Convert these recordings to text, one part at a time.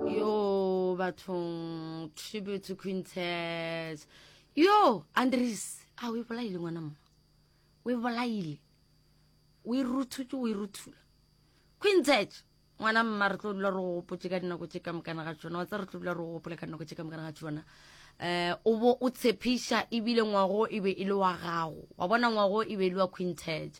yo bathong tribute to quintet yo andres a o e bolaile ngwana mma o e bolaile o e ruthutse o e ruthula quintet ngwana mma re tlo dula re gopotse ka dinako tse ka mokana ga tsona wa tsa re tlo dula re gopole ka dinako tse ka mokana ga tsona um o bo o tshepiša ebile ngwago e be e le wa gago wa bona ngwago e be e le wa quintet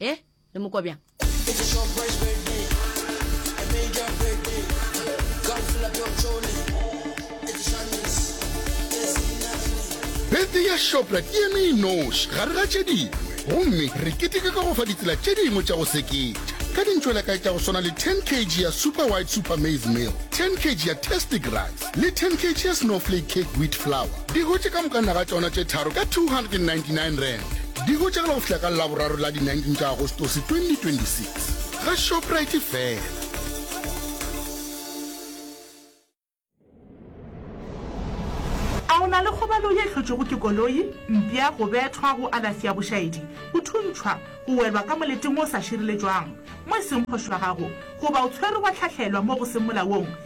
e le mokwa bjang Birthday ya Shoprite e eme e noši gare ga tše dingwe gomme re keteka ka go fa ditsela tše dingwe tša go seketša ka dintšwelakae tša go swana le 10 kg ya Super White Super Maize Meal, 10 kg ya Tastic Rice, le 10 kg ya Snowflake Cake Wheat Flour di hotše ka moka naga tšona tše tharo ka R299. Di hotšegela go fihla ka Laboraro la di 19 tša Agostose 2026 ga Shoprite fela. A o na le kgobalo ye hlotšwego ke koloi, mpša, go bethwa, go alafsi ya bošaedi, go thuntšhwa, go welwa ka moleteng o sa šireletšwang mo e seng phošo ya gago, goba o tshwerwe wa hlahlelwa mo go seng molaong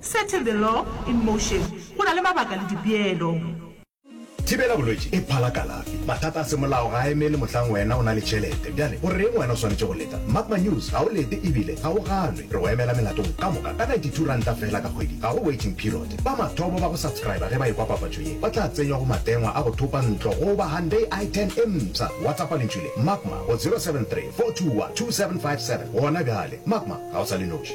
Setting the law in motion, Go na le mabaka le dipeelo. Thibela bolwetši e phala kalafi. Mathata a semolao ga a emele mohlang wena o na le tšhelete. Bjale, o reng wena o swanetše go leta? Mark my news, ga o lete ebile ga o ganwe. Re go emela melatong ka moka ka ninety-two ranta feela ka kgwedi. Ga go waiting period. Ba mathomo ba go subscriber ge ba ekwa papatšo ye ba tla tsenywa go matengwa a go thopa ntlo goba Hyundai I ten e mpsha. Whatsappa lentšu le, Magma, go zero seven three four two one two seven five seven gona bjale. Magma, ga o sa le noši.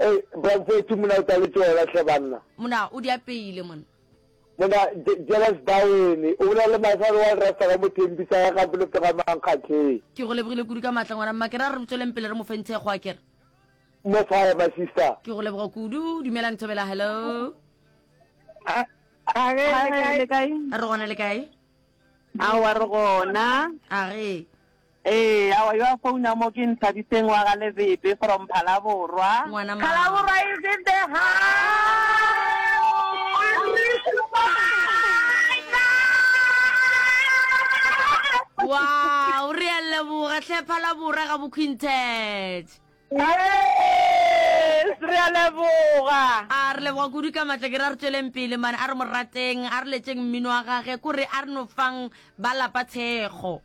Ei, Bramfethi mona o tla le tšona hle banna. Mona o di apeile monna. Mona Je, Jealous Bawene, o bolela le Maesane wa Lerasta ka Mothempi sa ya Gampe Lophe ga Mankgatlheng. Ke go lebogile kudu ka maatla ngwana mma, ke ra re re tsweleng pele re mo fe ntshego a ke re. More fire my sister. Ke go leboga kudu, dumelang Thobela hello. A, a ge le kae? Re gona le kae? Aowa re gona. A ge. Ee, awa yo a founa mo ke Nthabiseng wa ga Lebebe from Phalaborwa. Ngwana ma. Phalaborwa is in the house. Wow, re a leboga tlhe Phalaborwa ga Bokhwinthetše. Yes, re a leboga. A re leboga kudu ka matla ke re a re tšweleng pele mane a re mo rateng a re letšeng mmino wa gage ko re a re no fang ba lapa thekgo.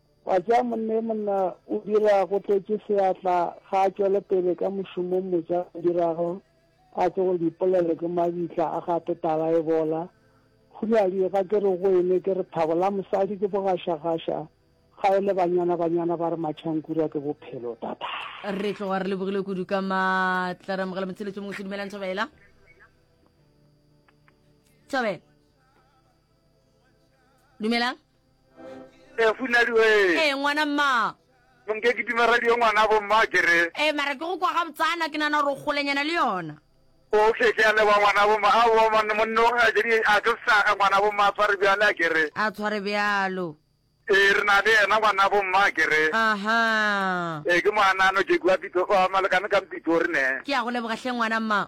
Wa tša monne monna o dira go tletše seatla ga a tšwele pele ka mošomong motša o dirago a tsoge dipolelo ke mabitla a gate tala e bola Hulali ga ke re go ene ke re thabo la mosadi ke bogašagaša ga e le banyana banyana ba re matšhankura ke bophelo tata re tloga re lebogile kudu ka matla re amogela motsheletso mongwe se dumelang thobela thobela dumelang e funadi we ee ngwana mma monke ke dima radio ngwana bo mma ke re ee mara ke go kwa ga botsana ke nana gore o golenyana le yona okay ke a leba ngwana bo mma a bo monna monna o ga jedi a ke saga ngwana bo mma tshware bjale a ke re a tshware bjalo ee re na le yena ngwana bo mma ke re aha ee ke moanano ke kwa pitso wa malekane ka mpitso re ne ke a go leboga hle ngwana mma